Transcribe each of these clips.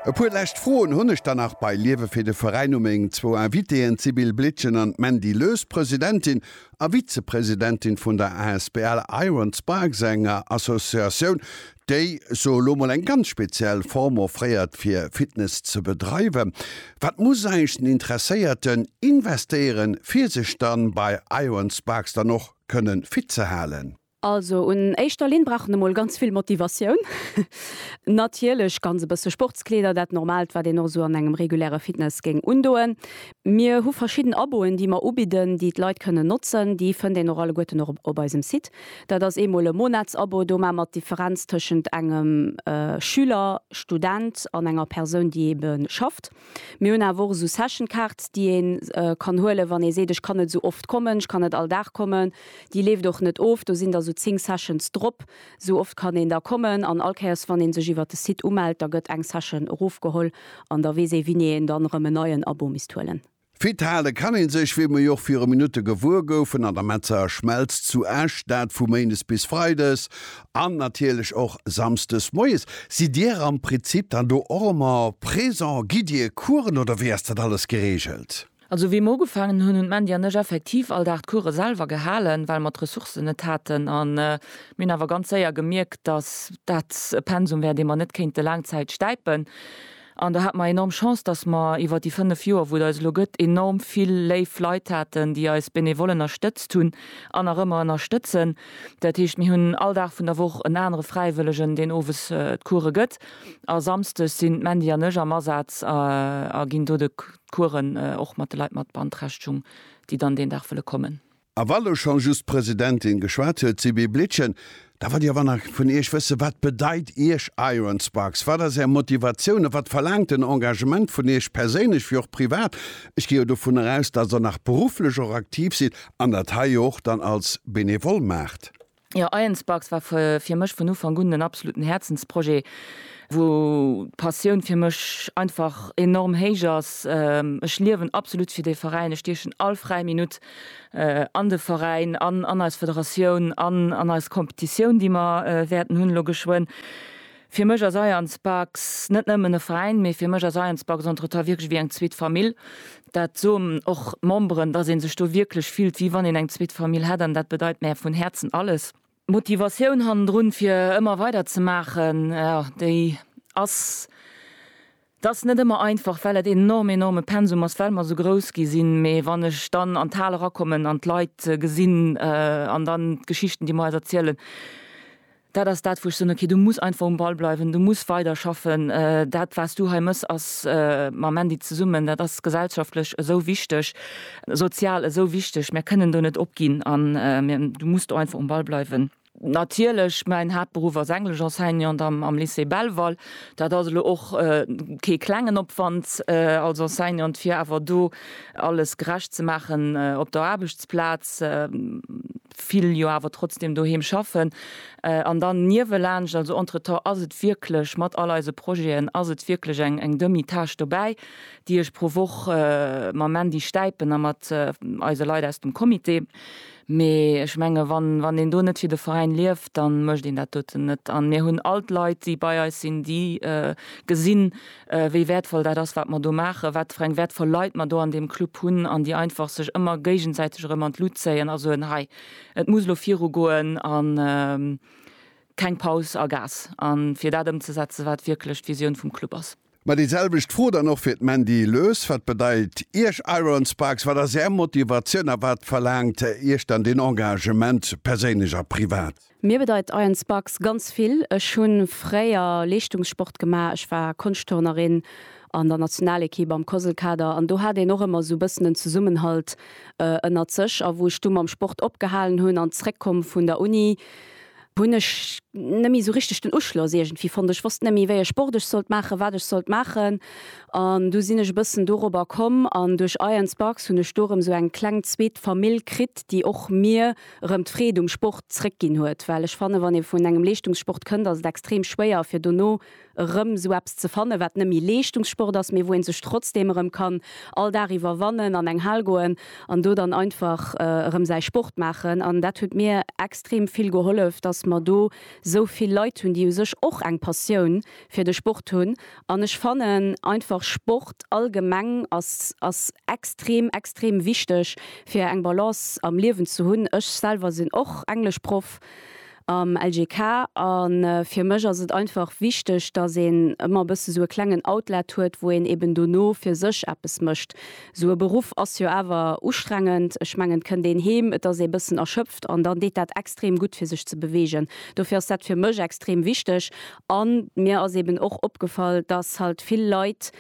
E puer lescht Froen hunn ech dann nach bei Liewe fir de Veräin u meng zwou Invitéen, d'Sybille Blietgen an d'Mandy Loes, Presidentin a Vizepresidentin vun der asbl Iron Sparks, enger Associatioun, déi, soe lo mol, eng ganz speziell Form offréiert fir Fitness ze bedreiwen. Wat muss eigentlech den Interesséierten investéieren, fir sech dann bei Iron Sparks dann och kënnen fit ze halen? Also un éischter Linn brauch en emol ganz vill Motivatioun. Natierlech ganz e bësse Sportskleeder, dat Normaalt, wat een och esou an engem reguläre Fitness géing undoen. Mir hu verschidden Aboen, déi mer ubidden, déi d'Leit kënnen notzen. Déi fënnt een och alleguerten och op eisem Site. Dat ass eemol e Monatsabo, do maache mer d'Differenz tëschent engem Schüler, Student an enger Persoun, déi eebe schafft. Mir hunn awer och esou Session Cards, déi ee kann huelen, wann ee seet, ech kann net esou oft kommen, ech kann net all Dag kommen. Déi leeft och net of, do sinn da sou 10 Sessions drop. Esou oft kann een da kommen an all Kéiers, wann ee sech iwwert de Site umellt, da gëtt eng Session erofgeholl an da weess ee, wéini een dann erëm en neien Abo misst huelen. Fit hale kann ee sech, wéi mer jo och viru Minutte gewuer goufen, an der Metzeger Schmelz zu Esch, dat vu méindes bis freides an natierlech och samsdes moies. Sidd Dir am Prinzip dann do och ëmmer présent? Gitt Dir Coursen oder wéi ass dat alles geregelt? Also wéi mer ugefaangen hunn, hunn d'Mandy an ech effektiv all Dag d'Course selwer gehalen, well mer d'Ressourcen net haten. A mir hunn awer ganz séier gemierkt, dass dat e Pensum wär, dee mer net kéinte laang Zäit stäipen. An do hate mer enorm Chance, dass mer iwwer déi fënnef Joer, wou et eis elo gëtt, enorm vill léif Leit haten, déi eis benevol ënnerstëtzt hunn an nach ëmmer ënnerstëtzen. Dat heescht, mir hunn all Dag vun der Woch en anere Fräiwëllegen, deen owes d'Coure gëtt. A samsdes sinn d'Mandy an ech am Asaz a ginn do d'Couren och mat de Leit mat beanträchtegung, déi dann deen Dag wëlle kommen. A wa lo scho just d'Presidentin geschwat huet, Sibylle Blietgen, da wollt ech awer nach vun Iech wëssen, Wat bedeit Iech Iron Sparks? Wat ass Är Motivatioun a wat verlaangt den Engagement vun Iech perséinlech wéi och privat? Ech ginn jo dovunner aus, dass Der nach berufflech och aktiv sidd an dat hei jo och dann als Benevole maacht. Jo, Iron-Sparks war fir mech vun Ufank un en absoluten Häerzensprojet, wou d'Passioun fir mech einfach enorm héich ass. Ech liewen absolut fir dee Veräin, ech stiechen all fräi Minutt an de Veräin an, an eis Federatioun an, an eis Competitioun, déi mer wäerten hunn elo geschwënn. Fir mech ass Iron-Sparks net nëmmen e Veräin, mee fir mech ass Iron-Sparks entretemps wierklech ewéi eng zweet Famill. Dat soen och d'Memberen, dass ee sech do wierklech fillt, wéi wann een eng zweet Famill hätt. An dat bedeit mär vun Häerzen alles. D'Motivatioun hannendrun, fir ëmmer weider ze maachen, jo, déi ass, et ass net ëmmer einfach, well et een enorm, enorme Pensum ass, well mer esou grouss gi sinn. Mee wann ech dann an d'Hal erakommen an d'Leit gesinn an dann d'Geschichten, déi mer eis erzielen, Dat ass dat, wou ech soen, okay, du muss einfach um Ball bleiwen, du muss weider schaffen. Dat, wat du hei mëss, ass mam Andy zesummen, dat ass gesellschaftlech esou wichteg, sozial esou wichteg. Mir kënnen do net opginn an du muss do einfach um Ball bleiwen. Natierlech, mäin Haaptberuff ass Englesch-Enseignant am Lycée Belval. Dat ass elo och kee klengen Opwand als Enseignant, fir awer do alles gerecht ze maachen op der Aarbechtsplaz. vill jo awer trotzdem doheem schaffen an dann niewelaanscht, also entretemps ass et wierklech, mat all eise Projeten, ass et wierklech eng eng Demi-Tâche dobäi, déi ech pro Woch mam Mandy stäipen a mat eise Leit aus dem Comité. Mee ech menge wann wann een do net fir de Veräin lieft, da mécht een dat doten net. An mir hunn all d'Leit, déi bei eis sinn, déi gesinn, wéi wäertvoll dat ass, wat mer do maachen, wat fir eng wäertvoll Leit mer do an deem Club hunn an déi einfach sech ëmmer géigensäiteg erëm an d'Lut zéien a soen, hei, et muss elo viru goen a keng Paus a Gas a fir dat ëmzesetzen, wat wierklech d'Visioun vum Club ass. Mä déi selwecht Fro dann och fir d'Mandy Loes, Wat bedeit Iech Iron Sparks, wat ass Är Motivatioun a wat verlaangt Iech dann deen Engagement, perséinlech a privat? Mir bedeit Iron Sparks ganz vill. Ech hunn fréier Leeschtungssport gemaach, ech war Konschtturnerin an der Nationalequipe am Koselkader an do hat een och ëmmer sou bëssen en Zesummenhalt ënnert sech. A wou ech du mam Sport opgehalen hunn an zréckkomm vun der Uni, hunn ech nëmmi sou richteg den Uschloss iergendwéi fonnt. Ech wosst nëmmi wéi ech Sport ech sollt maachen, wat ech sollt maachen an du sinn ech e bëssen dorobber komm an duerch Iron Sparks hunn ech do erëm sou eng kleng zweet Famill kritt, déi och mir, erëm d'Freed um Sport zréck ginn huet, well ech fannen, wann ee vun engem Leeschtungssport kënnt, ass et extrem schwéier fir dono erëm esou eppes ze fannen, wat net méi Leeschtungssport ass, mee wou een sech trotzdem erëm kann all Dag iwwerwannen, an eng Hal goen an do dann einfach erëm säi Sport maachen. An dat huet mir extrem vill gehollef, dass mer do esou vill Leit hunn, déi u sech och eng Passioun fir de Sport hunn An ech fannen einfach Sport allgemeng ass ass extrem extrem wichteg fir eng Balance am Liewen ze hunn. Ech selwer sinn och Engleschproff am LGK an fir mech ass et einfach wichteg dass een ëmmer e bësse sou e klengen Outlet huet wou een eben dono fir sech eppes mécht. Sou e Beruff ass jo awer ustrengend. Ech mengen et kënnt een heem, et ass ee bëssen erschöpft an dann deet dat extrem gutt fir sech ze beweegen. Dofir ass dat fir mech extrem wichteg A mir ass eben och opgefall, dass halt vill Leit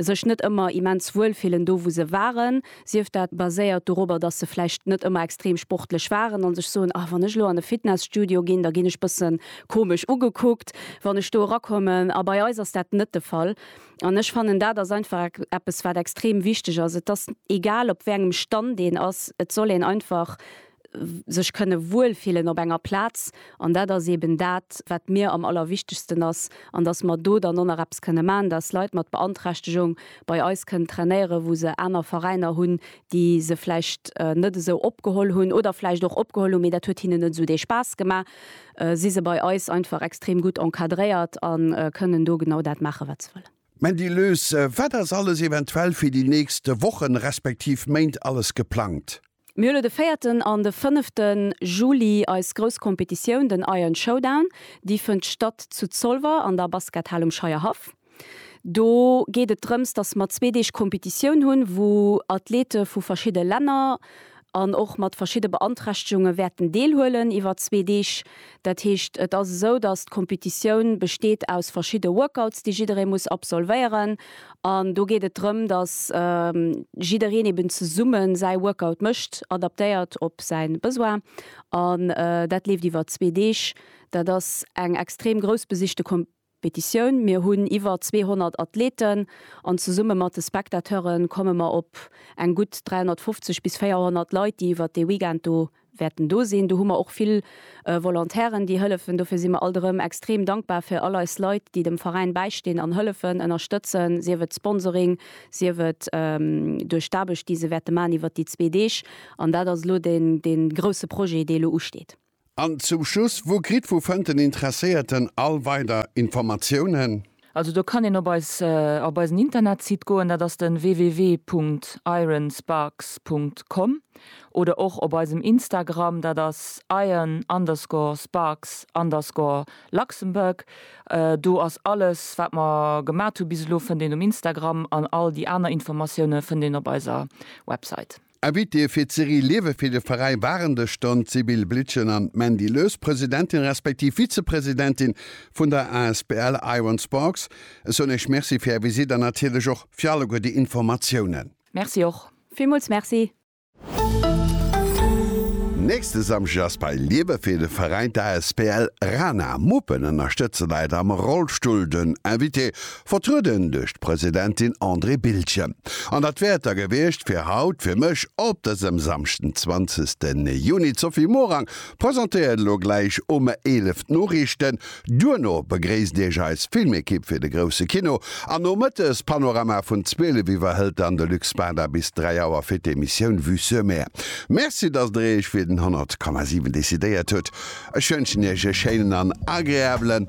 sech net ëmmer immens wuel fillen do, wou se waren, sief dat baséiert doropper, dass se vläicht net ëmmer extrem sportlech waren a sech soen, ah, wann ech elo an e Fitnesstudio ginn, da ginn ech bësse komesch ugekuckt, wann ech do erakommen. A bei eis ass dat net de Fall. An ech fannen, dat ass einfach eppes, wat extrem wichteg ass. Et ass egal, op wéi engem Stand een ass, et soll een einfach sech kënne wuel fillen op enger Plaz an dat ass eeben dat, wat mir am allerwichtegsten ass an dass mer do dann och nach eppes kënne maachen, dass Leit mat Beanträchtegung bei eis kënnen trainéieren, wou se aner Veräiner hunn, déi se vläicht net esou opgeholl hunn oder vläicht och opgeholl hunn, mee dat huet hinnen net esou dee Spaass gemaach, si se bei eis einfach extrem gutt encadréiert a kënnen do genau dat maachen, wat se wëllen. Mandy Löß, Wat ass alles eventuell fir déi nächst Wochen, respektiv Méint alles geplangt? Mir hunn elo de véierten an de fënnefte Juli eis grouss Kompetitioun, den Iron Showdown. Déi fënnt statt zu Zolwer an der Baskethal um Scheierhaff. Do geet et drëms, dass mer zwee Deeg Kompetitioun hunn, wou Athlete vu verschidde Länner an och mat verschidde Beanträchtegunge wäerten deelhuelen iwwer zwee Deeg. Dat heescht, et ass esou, datt d'Competitioun besteet aus verschidde Workouts, déi jidderee muss absolvéieren. An do geet et drëm, datt jiddereen eben zesumme säi Workout mécht, adaptéiert op säi Besoin. An dat leeft iwwer zwee Deeg. Dat ass eng extrem groussbesichte Competitioun. Petitioun, Mir hunn iwwer 200 Athleten an zesumme mat de Spectateure komme mer op eng gutt 350 bis 400 Leit, déi iwwer dee Weekend do wäerten do sinn. Do hu mer och vill Volontairen, déi hëllefen. Dofir si mer alt erëm extrem dankbar fir all eis Leit, déi dem Veräin bäistinn an hëllefen, ënnerstëtzen, sief et Sponsoring, sief et duerch d'Aarbecht, déi se wäerte maachen iwwer déi zwee Deeg. An dat ass elo dee grousse Projet, dee elo usteet. An zum Schluss, wou kritt, wou fënnt den Interesséierten all weider Informatiounen? Also do kann een op eis op eisen Internetsite goen, dat ass den www.ironsparks.com oder och op eisem Instagram, dat ass iron underscore sparks underscore luxembourg. Do ass alles wat mer gemat hu bis elo fënnt een um Instagram an all déi aner Informatioune fënnt een op eiser Website. Invitée fir d'Serie Liewe fir de Veräi waren de Ston d'Sibylle Blitschen an d'Mandy Lös, Presidentin respektiv Vizepresidentin vun der asbl Iron Sparks. Ech soen Iech Merci fir Är Visite an natierlech och fir alleguer déi Informatiounen. Merci och. Villmools Merci. Nächste Samschdeg ass bei Liewe fir de Veräi d'asbl Rana. Muppen ënnerstëtze Leit am Rollstull. Den Invité Vertrueden duerch d'Presidentin Andrée Bildgen. An dat wär et da gewiescht fir haut fir mech op dësem Samschden 20 Juni. D'Sophie Morang presentéiert elo gläich um 11 d'Noriichten. Duerno begréisst Iech eis Filmekipp fir de grousse Kino. An nomëttes Panorama vun 12 Uer hëlt dann de Luc Spada bis 3 Auer fir d'Emissioun Vue sur Mer. Merci, datt Der Iech fir den 100,7 decidéiert hutt. Ech wënschen Iech e schéinen an agreabelen.